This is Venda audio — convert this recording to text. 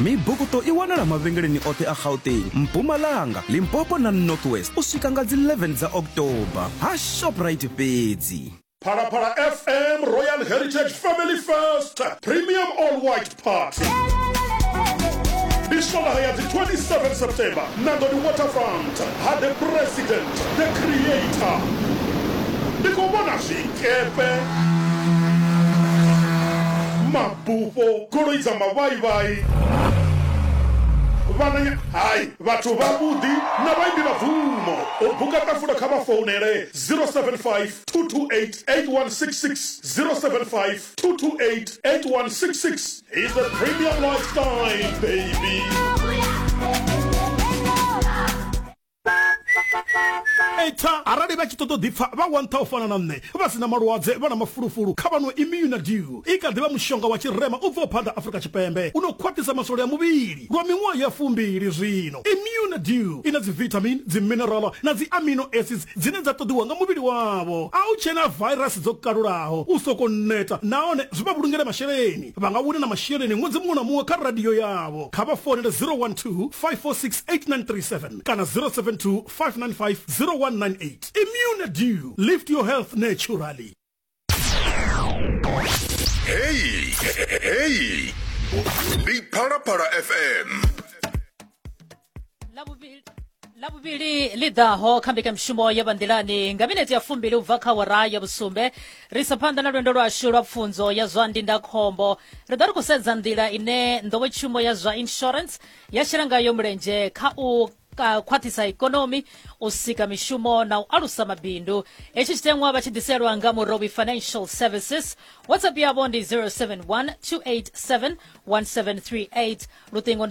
Mibukuṱo i wanala mavhengeleni oṱhe a Gauteng, Mpumalanga, Limpopo na North West u swika nga dzi 11 dza October ha Shoprite fhedzi. Phalaphala FM Royal Heritage Family First Premium All White Party. Ndi swondaha ya dzi 27 September Nangoni Waterfront ha The President The Creator. Ndi khou vhona zwikepe, ma. Bufho, goloi dza mavhaivhai, vhananya, hai, vhathu vhavhuḓi na vhaimbi vha bvumo. U buka ṱafula kha vha founele 0752288166, 0752288166. He's a premium lifestyle baby. eita arali vha tshi ṱoḓa u ḓipfa vha wa nṱha u fana na nṋe vha si na malwadze vha na mafulufulu kha vhanwe immunadiu i kha ḓivha mushonga wa tshirema u bvaho phanḓa afurika tshipembe u no khwaṱhisa masole a muvhili lwa miṅwaha ya fumbili zwino immunadiu i na dzivitamin dziminerala na dzi amino acids dzine dza ṱoḓiwa nga muvhili wavho a u tshena vairasi dzo kalulaho u soko neta nahone zwi vha vhulungele masheleni vha nga wina na masheleni ṅwedzi muṅwe na muṅwe kha radio yavho kha vha founele 012 546 8937 kana 072 595 0198 immune due lift your health naturally heyi heyi ndi phalaphala fm Labuvili- labuvili ḽi ḓaho kha mbekanyamushumo ya vhanḓilani nga minete ya fumbili u bva kha wara ya vhusumbe ri sa phanḓa na lwendo lwashu lwa pfunzo ya zwa ndindakhombo ri ḓo ri khou sedza nḓila ine nḓowetshumo ya zwa insurance ya shela ngayo mulenzhe kha u ka- khwaṱhisa ikonomi u sika mishumo na u alusa mabindu hetshi tshiteṅwa vha tshi ḓiselwa nga murobi financial services whatsapp yavho ndi 071 287 1738 luṱingo ndi